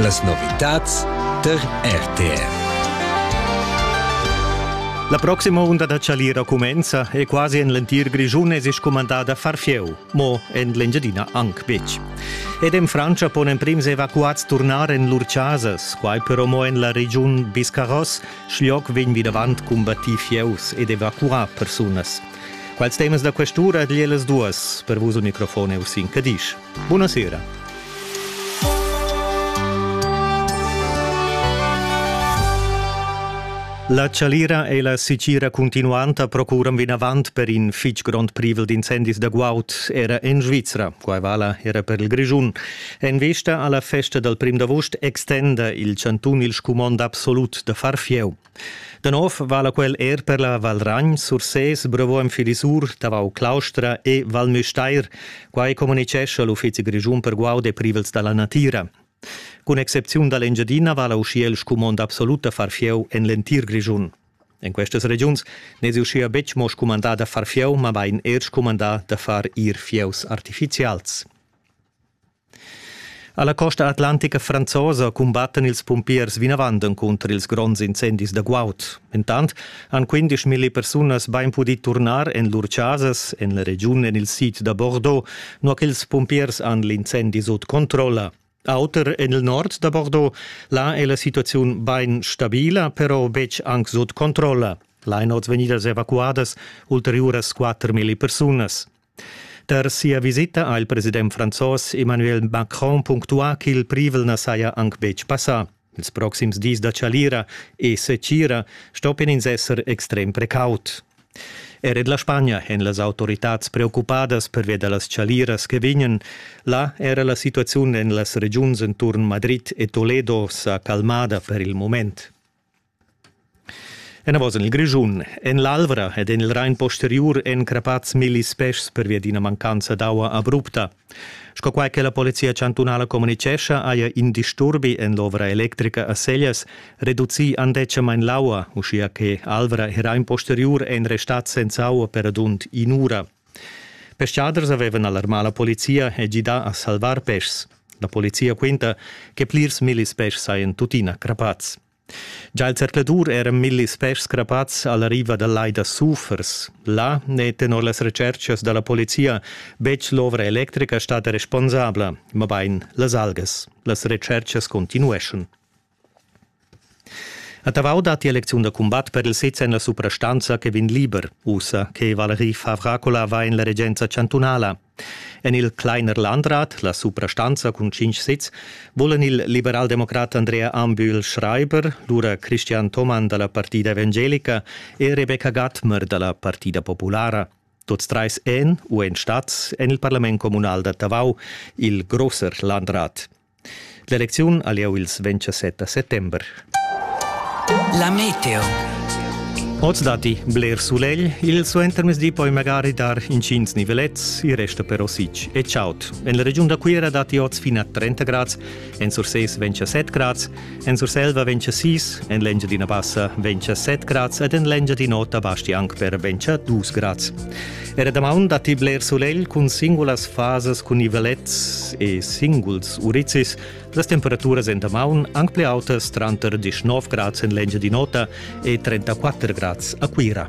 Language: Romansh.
Las novitads tar RTR. La proxima unda da chalira cumenza e quasi en l'entir Grischun è sich comandada far fieu, mo en l'Engiadina anc betg. Ed en Frantscha pon emprims evacuats turnar en lur chasas, quai però mo en la regiun Biscarros, schloc vegn vinavant combattì fieus ed evacuà persunas. Quels temas da quest'ura a las duas. Per vus un microfon è Usin Cadisch. Bunasera. La chalira e la sitgira continuanta procuran vinavant per in fitg grond privel d'incendis da guaud era en Svizra. Quai vala era per il Grischun. En vesta alla festa dal prim d'avust extenda il chantun il scumond absolut da far fieu. Da nov vala quel er per la Val Ragn, Sursés, Brevoem Filisur, Tavau Claustra e Val Müstair, quai communicescha l'Uffizi grischun per guaud e privels da la natira. Cun excepziun da l'Engiadina vala uschia il scumond absolut da far fieu en l'entir Grischun. En questas regiuns n'è uschia betg mo scumandà da far fieu, mabain er scumandà da far ir fieus artifizials. Alla costa atlantica franzosa cumbattan ils pumpiers vinavant encunter ils gronds incendis da guaud. Intant han 15.000 persunas bain pudì turnar en lur chasas en la regiun en il sid da Bordeaux, nua ch'ils pumpiers han l'incendi sut controlla. Auter en il nord da Bordeaux, là è la situaziun bain stabila, però betg anc sut controlla. Lain oz vegnidas evacuadas ulteriuras 4.000 persunas. Tar sia visita ha il president franzos Emmanuel Macron punctuà ch'il privel na saja anc betg passà. Ils proxims dis da chalira e setgira stoppian ins esser extrem precaut. Er en la Spagna èn las autoritads preoccupadas pervia da las chaliras che vegnan. Là era la situaziun en las regiuns enturn Madrid e Toledo sa calmada per il moment. Enavos en il Grischun, en l'Alvra ed en il Rain posteriur èn crappads millis peschs pervia d'ina mancanza d'aua abrupta. Sco quai che la Polizia chantunala communitgescha, haja in disturbi en l'ovra electrica a Seglias reducì andetgamain l'aua, uschia che Alvra e Rain posteriur èn restads senza aua per radund in'ura. Peschaders avevan alarmà la polizia e gidà a salvar peschs. La polizia quinta che plirs millis peschs sajan tuttina crappads. Già il zercladur era millis peschs crapats alla riva dal lai da Sufers. Là n'è tenor las retschertgas da la polizia betg l'ovra electrica stada responsabla, mabain las algas. Las retschertgas continueschan. A Tavau datti elecziun da cumbat per il sez en la suprastanza che vegn liber. Ussa che Valerie Favracola va en la regenza chantunala. En il Kleiner Landrat, la suprastanza cun tschintg sezs, vulan il liberaldemocrat Andrea Ambühl Schreiber, lura Christian Thomann da la Partida evangelica e Rebecca Gattmer da la Partida populara. Tuts treis èn u èn stats en il parlament communal da Tavau, il grosser Landrat. L'elecziun ha lieu ils 27 settember. La meteo. Oz datti bler sulegl, il suentermezdi poi magari dar intgins nivelets, il resto però sic e chaud. En la regiun da Cuira datti oz fin a 30 grads, en Sursés 27 grads, En Surselva ventscha 6, en l'Engiadina Bassa ventscha 7 grads ed en l'Engiadin'Ota basti anc per ventscha 2 grads. Era damaun datti bler sulegl cun singulas fasas cun nivelets e singuls urizis. Las temperaturas en damaun anc pli autas tranter 19 grads en l'Engiadin'Ota e 34 grads a Cuira.